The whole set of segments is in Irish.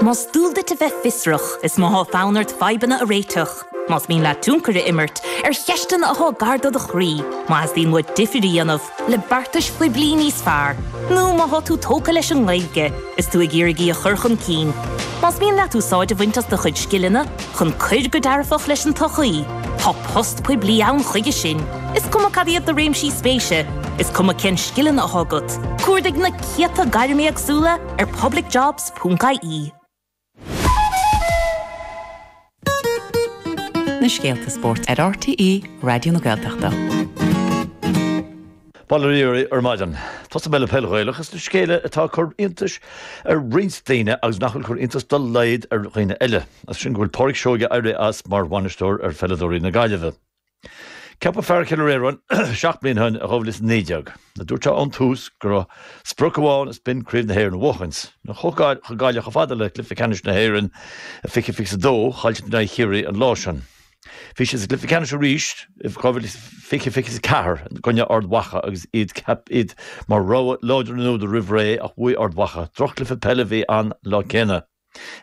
Más dual duit a bheith fiosrach, is má tá fonn ort fadhbanna a réiteach, más mian leat tionchar a imirt ar cheisteanna atá gar do do chroí, má theastaíonn uait difear a dhéanamh le beartais phoiblí níos fearr, nó má tá tú tógtha leis an nGaeilge is tú ag iarraidh í a chur chun cinn, más mian leat úsáid a bhaint as do chuid scileanna chun cuir go dearfach leis an tsochaí, tá post poiblí ann chuige sin, is cuma cad iad do réimsí spéise, is cuma cén scileanna atá agat. Cuardaigh na céadta gairm éagsúla, ar publicjobs.ie. Na scéalta spóirt ar RTÉ Raidió na Gaeltachta. Bail ó Dhia oraibh ar maidin. Tosóidh mé le peil Ghaelach is na scéala atá ag cur iontais ar roinnt daoine agus nach bhfuil cur iontas dá laghad ar dhaoine eile. Is sin go bhfuil Pádhraic Seoige éirithe as mar bhainisteoir ar pheileadóirí na Gaillimhe. Ceapadh fear Chill Fhir Iarainn seacht mbliana ó shin i 2019. Dúirt sé ón tús go raibh sprioc amháin is b'in Craobh na hÉireann a bhuachaint, now chuaigh Gaillimh chomh fada le Cluiche Ceannais na hÉireann i 2022 chaill siad in aghaidh Chiarraí an lá sin. Bhí siad sa gcluiche ceannais arís i 2020 24 i gcoinne Ard Mhacha agus iad mar rogha láidir an uair úd roimh ré ach bhuaigh Ard Mhacha. Drochchluiche peile a bhí ann an lá céanna.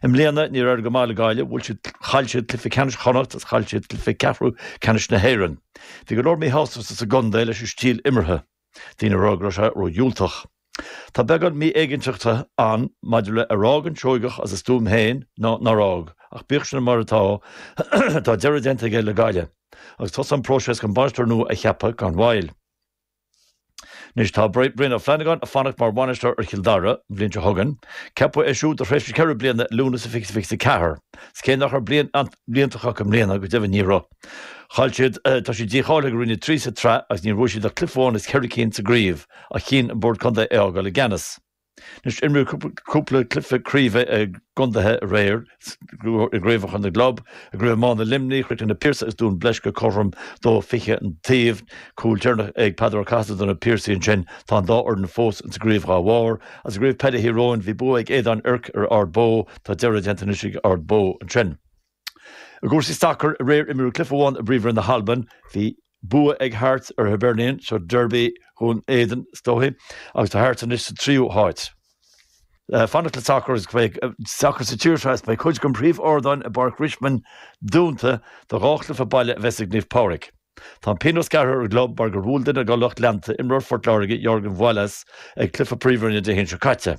I mbliana níor éirigh go maith le Gaillimh, bhuail siad, chaill siad cluiche ceannais Chonnacht agus chaill siad cluiche ceathrú ceannais na hÉireann. Bhí go leor míshástachta sa gcontae leis an stíl imeartha, daoine ag rá go raibh sé ró-dhiúltach. Tá beagán mí-éiginnteachta ann maidir le ar fhág an Seoigeach as a stuaim féin nó nár fhág, ach bíodh sin mar atá, tá deireadh déanta aige le Gaillimh agus tosaíonn an próiseas chun bainisteoir nua a cheapadh gan mhoill. Anois tá Brian Ó Flannagáin ag fanacht mar bhainisteoir ar Chill Dara an bhliain seo chugainn. Ceapadh é siúd do thréimhse ceithre bliana i Lúnasa 2024. Is cé nach raibh bliain iontach acu i mbliana, go deimhin ní raibh, chaill siad, tá siad dícháilithe go Roinn 3 sa tsraith agus níor bhuaigh siad ach cluiche amháin as ceithre cinn sa gcraobh ach chinn an bord contae é a fhágáil i gceannas. Anois, imríodh cúpla cluiche craoibhe i gcontaetha aréir, i gcraobhacha na gclub. I gcraobh iomána Luimnigh, chríochnaigh Na Piarsaigh agus Dún Bleisce cothrom dó fiche an taobh. Cúl deireanach ag Peadar Ó Cathasaigh do na Piarsaigh ansin. Tá an dá fhoireann fós sa gcraobh dhá bharr. Is i gcraobh peile Thír Eoghain, bhí bua ag Éadan Toirc ar Ard Bó. Tá deireadh déanta anois ag Ard Bó ansin. I gcúrsaí sacair aréir imríodh cluiche amháin i bPríomhroinn na hAlban. Bhí bua ag Hearts ar Hibernian, seo Derby Dhún Éideann is dóichí, agus tá Hearts anois sa tríú háit. Ag fanacht le sacar sacar sa tír seo is beidh cuid den phríomhardán i bPáirc Richmond dúnta do dhá chluiche baile a bheas ag Naomh Pádraig. Tá an pionós gearrtha ar an gclub mar gur bhuail duine dá lucht leanta imreoir Phort Láirge, Jørgen Voilås, ag cluiche Príomhroinne Dé hAoine seo caite.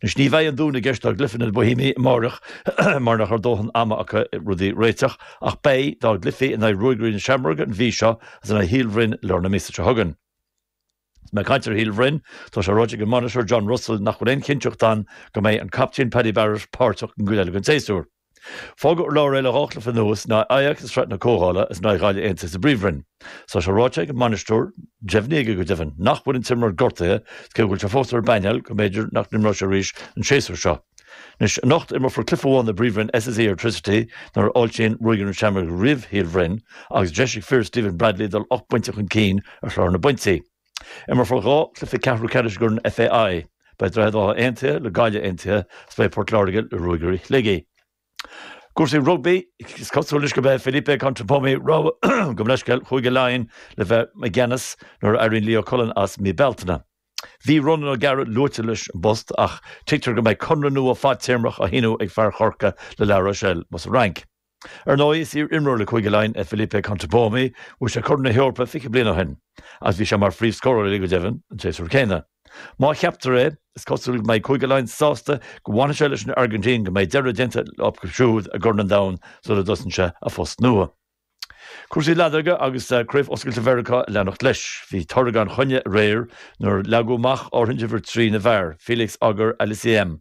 Anois, ní bheidh an dúnadh i gceist dá gcluiche in aghaidh Bohemians amáireach mar nach raibh dóthain ama acu rudaí a réiteach, ach beidh, dá gcluichí in aghaidh Ruagairí na Seamróige an mhí seo agus in aghaidh Shíol Bhroin lár na míosa seo chugainn. Is mé ag caint ar Shíol Bhroin, tá sé ráite ag an mbainisteoir John Russell nach bhfuil aon chinnteacht ann go mbeidh an captaen Paddy Barrett páirteach don gcuid eile den tséasúr. Fágadh ar lár é le dhá chluiche anuas, in aghaidh Ajax i Sraith na Comhdhála is in aghaidh Ghaillimh Aontaithe sa bPríomhroinn. Tá sé ráite ag an mbainisteoir, deimhnithe aige go deimhin, nach bhfuil an t-imreoir gortaithe is cé go bhfuil sé fós ar an bpainéal go mb'fhéidir nach n-imreoidh sé arís an séasúr seo. Anois, anocht imreofar cluiche amháin i bPríomhroinn SSE Airtricity nuair a fháiltíonn Ruagairí na Seamróige roimh Shíol Bhroin agus deis ag fir Stephen Bradley dul ocht bpointe chun cinn ar Chlár na bPointí. Imreofar dhá chluiche ceathrú ceannais i gCorn an FAI. Beidh Droichead Átha Aontaithe le Gaillimh Aontaithe agus beidh Port Láirge le Ruagairí Shligigh. I gcúrsaí rugbaí, is cosúil anois gurb é Felipe Contepomi rogha gabh mo leithscéal Chúige Laighean le bheith i gceannas nuair a éiríonn Leo Cullen as mí Bealtaine. Bhí Ronan O'Gara luaite leis an bpost ach tuigtear go mbeidh conradh nua fadtéarmach á shíniú ag fear Chorcaí le La Rochelle, amuigh sa Fhrainc. Ar ndóigh, is iar-imreoir le Cúige Laighean é Felipe Contepomi, bhuaigh sé Corn na hEorpa fiche bliain ó shin, agus bhí sé mar phríomhscórálaí, go deimhin, an séasúr céanna. Má cheaptar é, is cosúil go mbeidh Cúige Laighean sásta go bhfanfaidh sé leis an Airgintín go mbeidh deireadh déanta acu siúd i gCorn an Domhain sula dtosaíonn sé a phost nua. Cúrsaí leadóige agus Craobh Oscailte Mheiriceá ag leanacht leis. Bhí toradh gan choinne aréir nuair a leagadh amach ardthuin d'Uimhir 3 na bhfear, Felix Auger-Aliassime,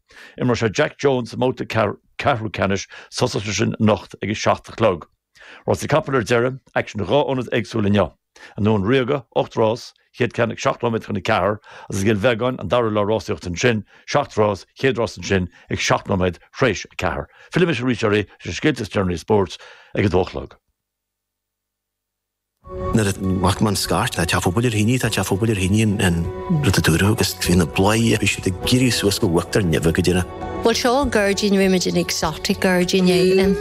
Imreoidh sé Jak Jones sa mbabhta ceathrú ceannais tosóidh sé sin anocht ag a seacht a chlog. Rásaí capall ar deireadh, aicsean in dhá ionad éagsúil inniu. An Dún Ríoga, 8 rás, chéad cheann ag seacht nóiméad chun a ceathair, agus i gCill Bheagáin, an dara lá rásaíochta ansin, seacht rás, chéad rás ansin, ag seacht nóiméad thréis a ceathair. Fillfidh mise arís oraibh leis na scéalta is deireanaí spóirt ag a dó a chlog. Nuair a bhac mé an scairt, tá teach an phobail ar thine, tá teach an phobail ar thine an rud a dúradh agus bhí na bladhairí, bhí siad ag éirí suas go huachtar neimhe go deireadh. Bhuel seo gairdín roimis an exotic gairdín éigin.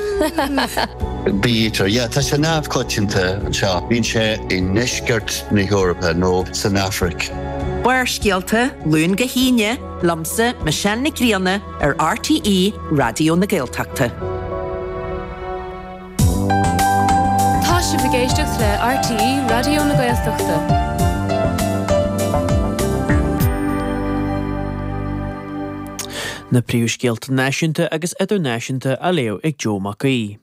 Bítear, yeah, tá sé neamhchoitianta anseo. Bíonn sé i ndeisceart na hEorpa nó san Afraic. Barrscéalta, Luan go hAoine, liomsa, Michelle Nic Grianna ar RTÉ Raidió na Gaeltachta. Tá sibh ag éisteacht le RTÉ Raidió na Gaeltachta. Na príomhscéalta náisiúnta agus idirnáisiúnta á léamh ag Joe Mac Aoidh.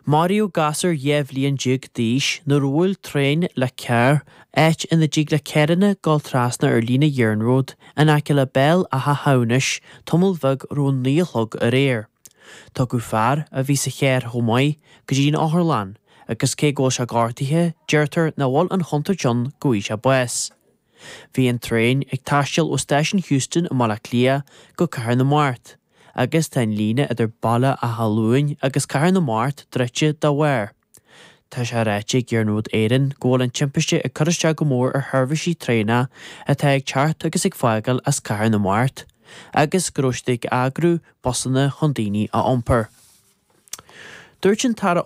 Maraíodh gasúr dhá bhliain déag d'aois nuair a bhuail traein le carr, áit ina dtig le carranna dul trasna ar líne iarnróid in aice le Béal Átha hAmhnais tamall bheag roimh a naoi a chlog aréir. Tugadh fear, a bhí sa charr chomh maith, go dtí an otharlann, agus cé go bhfuil sé gortaithe, deirtear nach bhfuil an chontúirt ann go bhfaighidh sé bás. Bhí an traein ag taisteal ó Stáisiún Heuston i mBaile Átha Cliath go Cathair na Mart, agus tá an líne idir Baile Átha Luain agus Cathair na Mart druidte dá bharr. Tá sé ráite ag Iarnród Éireann go bhfuil an timpiste ag cur isteach go mór ar sheirbhísí traenach atá ag teacht agus ag fágáil as Cathair na Mart agus go raibh siad ag eagrú busanna chun daoine a iompar. Dúirt an tAire